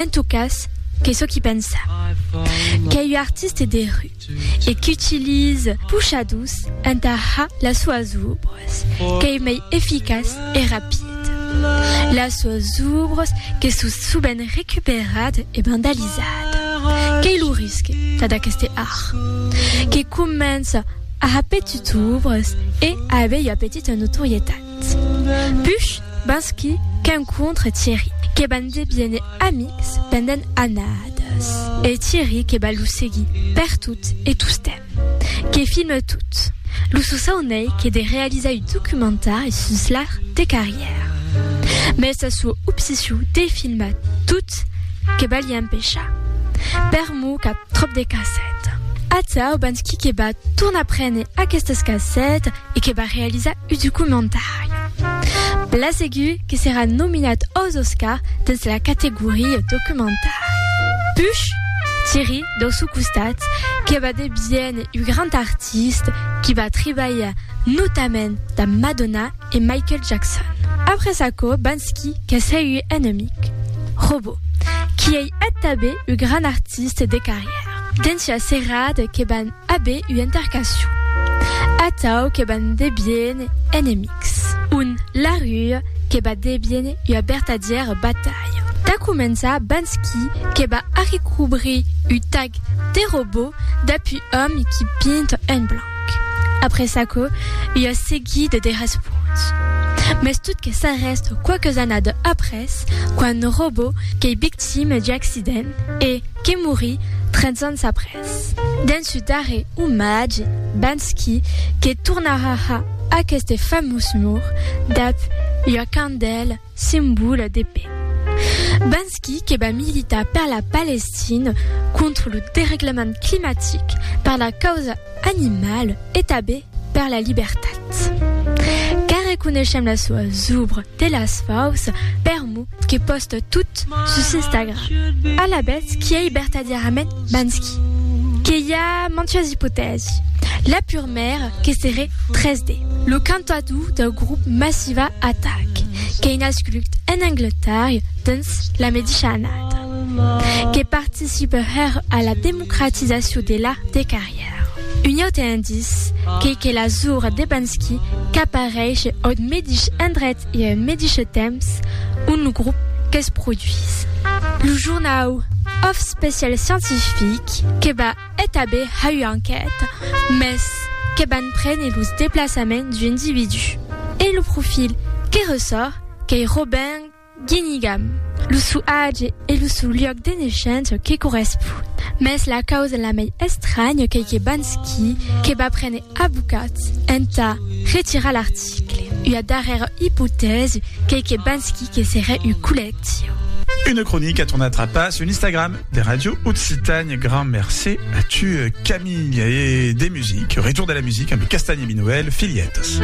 En tot cas, qu'ei çò qu'i pensa. Qu'ei ua artiste de rue e qu'utilize puchadors entà har las soas obres, qu'ei mei eficaç e rapid. Las soas obres que son sovent recuperadas e vandalizadas. Qu'ei lo risque tad aqueste art, que comença a har petit obres e a aver ua petita notorietat. Push, Bansky, qu'encontre Thierry, que van deviene amics pendent annadas, e Thierry que va lo seguir pertot e tostemp, que filme tot. Lo sosaunei que de realizar un documentari sus l'art de carrièr. Mes sa sua obsession de filmar tot que va li empechar. Per mot qu'a tròp de cassèta. Atau Bansky que va tornar prene aquestas cassètas. e que va realizar un documentari. Bla segur que serà nominat aus Oscars dens la categoria documentari. Puch, Thierry, dau sò costat, que va deviéner un grand artista qui va trabalhar notament damb Madonna e Michael Jackson. Après aquò, Banksy, qu'a segur un amic, Robo, qui ei ath tabé un grand artista de carrièra. Dens ua serada que va Abe ua intercacion. Atau que ban debien enemics. Un la rua que ba debien ua bertadièra batalha. Tà començar bans qui que ba arrecobrir u tag de robot d'apu òm qui pinta en blanc. Après çaquò, ua seguida de responts. Mès tot que s'arrèst quauques annada après, quand robot qu'ei victime d'u accident e que morí 30 ans après. Dens su darrer omatge, Banksy, que tornarà a aqueste famós mur, dab ua candèla, simbòla de paix. Banksy que va militar per la Palestina, contra lo dereglament climatic, per la causa animala, e tabé per la libertat car reconeishem la soa zubra de las faus per mo que posta tot sus Instagram. Alavetz qu'i ei bertadièrament Banksy que i a mantuas ipotèsi, la purmèra que seré 3D, lo cantador dau grop Massiva Attack qu'ei nascut en Angletarria dens la medisha annada, que participe hèr a la democratizacion de l'art de carrièr. Un aute indice qu'ei que la zura de Bansky qu'apareishe aut medish endret e en medishe temps ont lo grop que's produís. Lo jornau Of Special Scientific que va etabir ha ua enquèta, mès que van prene los deplaçaments d'ua individú. E lo profil que ressòrt qu'ei Robin. Guinigam, lo sou age e lo sou luòc de neishença que correspon. Mès la causa la mei estranya qu'ei que Bansky que va prene abocats entà retirar l'article. Ua darrèra ipotèsi qu'ei que Bansky que serè un collectiu. Una cronica torna trapar sul Instagram de Ràdio Occitània. Grand mercé a tu, Camilh. E de music, retour de la music amb Castagni Minoel, Filhetas.